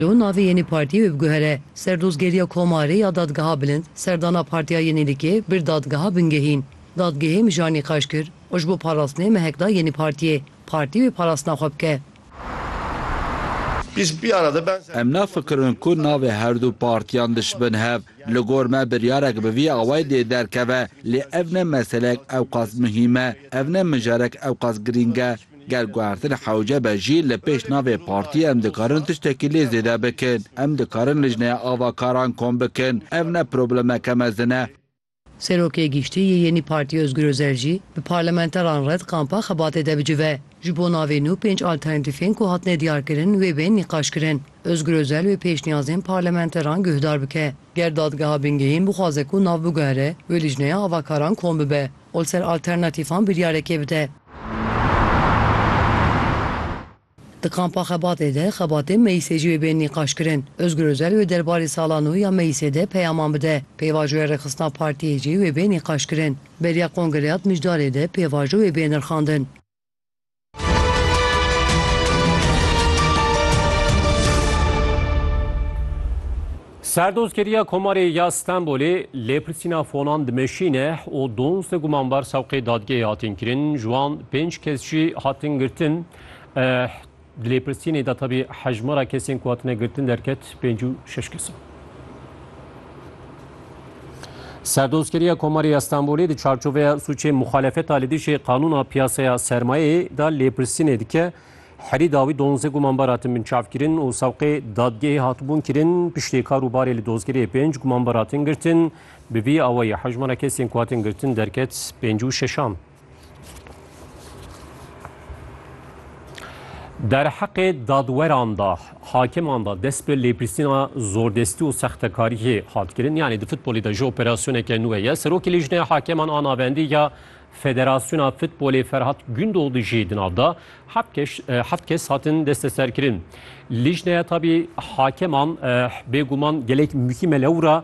Lê navê yeni partiyê wê biguhere ser dozgeriya komarê ya Dadgeha Bilind, serdana Partiya Yenîlikê bir Dadgeha Bingehîn. Dadgehê mijar nîqaş kir û ji bo parastinê mehek da yeni partiyê, partî wê parastina xwe bike. Em nafikirin ku navê herdû partiyan dişibin hev. Li gor me biryarek bi vî awayî dê derkeve, lê ev ne meseleyek ewqas muhîm e, ev ne mijarek ewqas girîng e. Ger guhertin hewce be jî li pêş navê partiyê em dikarin tiştekî lê zêde bikin. Em dikarin lijneya avakaran kom bikin. Ev ne problemeke mezin e. Serokê Giştî yê Yenî Partî Ozgur Ozel jî bi parlamenteran re di kampa xebatê de bicive. Ji bo navê nû pênc alternatîfên ku hatine diyarkirin wê bên nîqaş kirin. Ozgur Ozel wê pêşniyazên parlamenteran guhdar bike. Ger dadgeha bingehîn bixwaze ku nav biguhere, wê lijneya avakaran kom bibe. û li ser alternatîfan biryarekê bide. Di kampa Xebatê de xebatên meyîsê jî wê bên nîqaşkirin. Ozgur Ozel wê derbarê sala nû ya meyîsê de peyaman bide. Pêvajoya rêxistina partiyê jî wê bê nîqaşkirin. Beriya kongreya di mijdarê de pêvajo wê bê nirxandin. Serdozgeriya Komarê ya Stenbolê lêpirsîna fonan dimeşîne û donse gumanbar sewqê dadgehê hatin kirin, ji wan pênc kes jî hatin girtin. Di lêpirsînê de tevî hejmara kesên ku hatine girtin derket pênc û şeş kes in. Serdozkeriya Komarê ya Stenbolê di çarçoveya sûcê muxalefeta li dijî qanûna piyaseya sermayeyê de lêpirsînê dike. Herî dawî donze gumanbar hatin binçavkirin û sewqê dadgehê hatibûn kirin. Piştî kar û barê li dozgeriyê pênc gumanbar hatin girtin. Bi vî awayî hejmara kesên ku hatin girtin derket pênc û şeşan. Derheqê dadweran de, hakiman de dest bi lêpirsîna zordestî û sextekariyê hat kirin. Yanî di futbolê de jî operasyoneke nû heye. Serokê Lîjneya Hakeman a Navendî ya Federasyona Futbolê Ferhat Gündoğdu jî di nav da. Heft kes, heft kes hatin desteserkirin. Lîjneya tabî hakeman bêguman gelek muhîm e lewra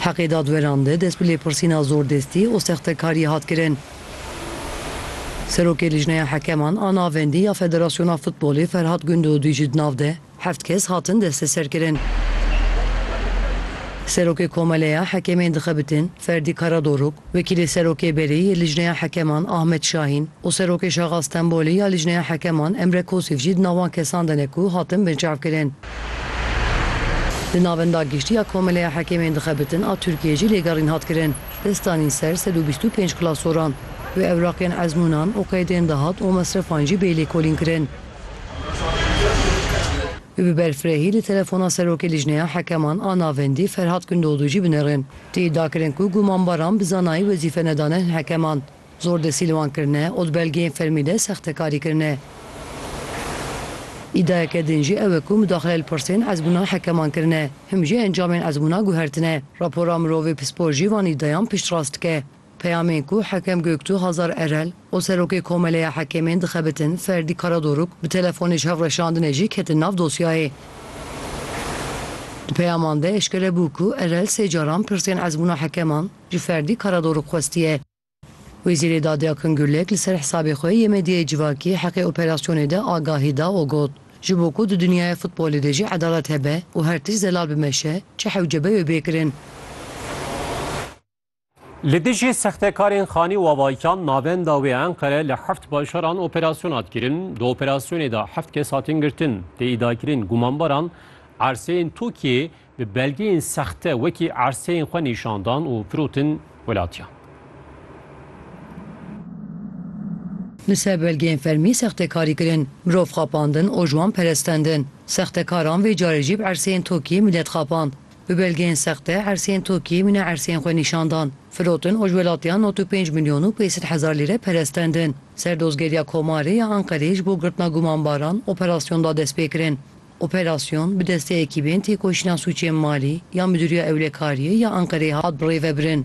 Heqê dadweran de dest bi lêpirsîna zordestî û sextekariyê hat kirin. Serokê Lijneya Hekeman a Navendî ya Federasyona Futbolê Ferhat Gundodî jî di nav de heft kes hatin desteserkirin. Serokê Komeleya Hekemên dixebitin Ferdî Karadoruk, Wekîlê Serokê Berê yê Lijneya Hekeman Ahmet Şahîn û Serokê Şaxa Stenbolê ya Lijneya Hekeman Emre Kosif jî di nav wan kesan de ne ku hatin binçavkirin. Di Navenda Giştî ya Komeleya Hekêmên Dixebitin a Tirkiyeyê jî lêgerîn hat kirin. Dest danîn ser sed û bîst û pênc klasoran. Wê ewraqên ezmûnan û qeydên dahat û mesrefan jî bê lêkolîn kirin. Wê bi berfirehî li telefona Serokê Lijneya Hekeman a Navendî Ferhat Gundoğdu jî binêrin. Tê dakirin ku gumanbaran bi zanayî wezîfe nedane hin hekeman, zor desîlwan kirine û di belgeyên fermî de sextekarî kirine. Îdayeke din jî ew e ku mudaxile li pirsên ezmûna hekeman kirine, him jî encamên ezmûna guhertine. Rapora mirovê pispor jî van îdayan piştrast dike. Peyamê ku Hekem Göktuh Hazar Erel û Serokê Komeleya Hekemên dixebitin Ferdî Karadoruk bi telefonê ji hevreşandinê jî ketin nav dosyayê. Di peyaman de eşkere bû ku Erel sê caran pirsên ezmûna hekeman ji Ferdî Karadoruk xwestiye. Wezîrê Dadê Akın Gürlek li ser hisabê xwe yê medyayê civakî heqê operasyonê de agahî da û got, Ji bo ku di dinyaya futbolê de jî edalet hebe û her tişt zelal bimeşe çi hewce be wê bê kirin. Li dijî sextekarên Xanî Wavaykan navenda wê Enqere li heft bajaran operasyona hat kirin. Di operasyonê de heft kes hatin girtin. Tê îdiakirin gumanbaran erseyên Tokiyeyê bi belgeyên sexte wekî erseyên xwe nîşan dan û firotin welatiyan. Li ser belgeyên fermî sextekarî kirin, mirov xapandin û ji wan perestendin. Sextekaran vê carê jî bi erseyên Tokiyeyê milet xapand. Bi belgeyên sexte erseyên Tokiyê mîna erseyên xwe nîşan dan. Firotin ojwelatiyan nod û pênc milyon û pêsed hezar lîre perestendin. Ser dozgeriya Komarê ya Anqereyê ji bo girtina gumanbaran operasyon da destpêkirin. Operasyon bi destê ekîbên têkoşîna sûcên malî ya Midûriya Ewlekariyê ya Anqereyê hat birêvebirin.